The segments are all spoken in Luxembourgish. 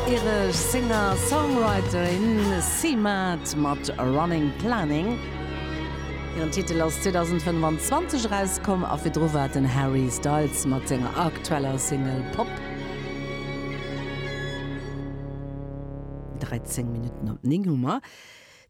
Iresch Singer-Songwriterin Cee-Mart mat Running Planning. Hiren Titel ass 2025 erauskomm a virdru war et den Harry Styles mat senger aktueller Single Pop. 13 Minutten op 9 hu mer.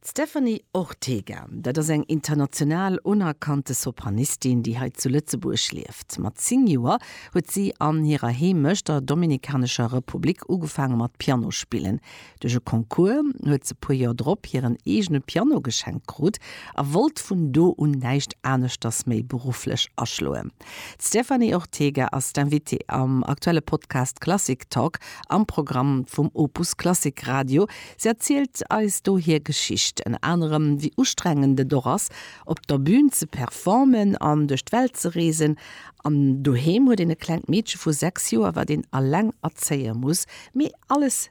D'Stéphanie Ortega, dat ass eng international unerkannte Sopranistin, déi hei zu Lëtzebuerg lieft. Mat 10 Joer huet si an hirer Heemecht, der Dominikanescher Republik, ugefaange mat Piano spillen. Duerch e Concours huet se puer Joer drop hiren eegene Piano geschenkt krut a wollt vun do un näischt aneschters méi berufflech aschloen. D'Stephanie Ortega ass d'Invitée am aktuelle Podcast Klassik Talk am Programm vum Opus Klassik Radio. Si erzielt eis do hir Geschicht, ënner anerem wéi ustrengend et och ass, op der Bün ze performen an duerch d'Welt ze reesen. An doheem huet een e klengt Meedche vu 6 Joer, wat een eleng erzéie muss. Mee alles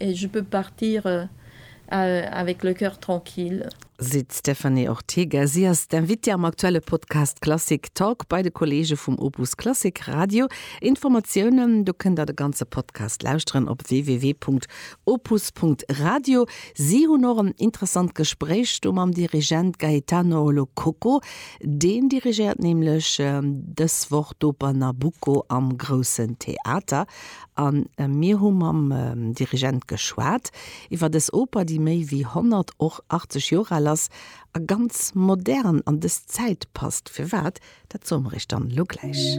Et je peux partir avec le cœur tranquille. Seet d'Stéphanie Ortega. Si ass d'Invitée am aktuelle Podcast Klassik Talk bei de Kolleege vum Opus Klassik Radio. Informatiounen, do kënnt der de ganze Podcast lauschteren, op www.opus.radio. Si hunn och en interessant Gespréich do mam Dirigent Gaetano Lo Cocco. Deen dirigéiert nämlech dës Woch d'Oper Nabucco am Groussen Theater. A mir hu mam Dirigent geschwat iwwer dës Oper, déi méi wéi 100, och 80 Joer al ass a ganz modern an dës Zäit passt. Firwat, dat soe mer iech dann elo gläich.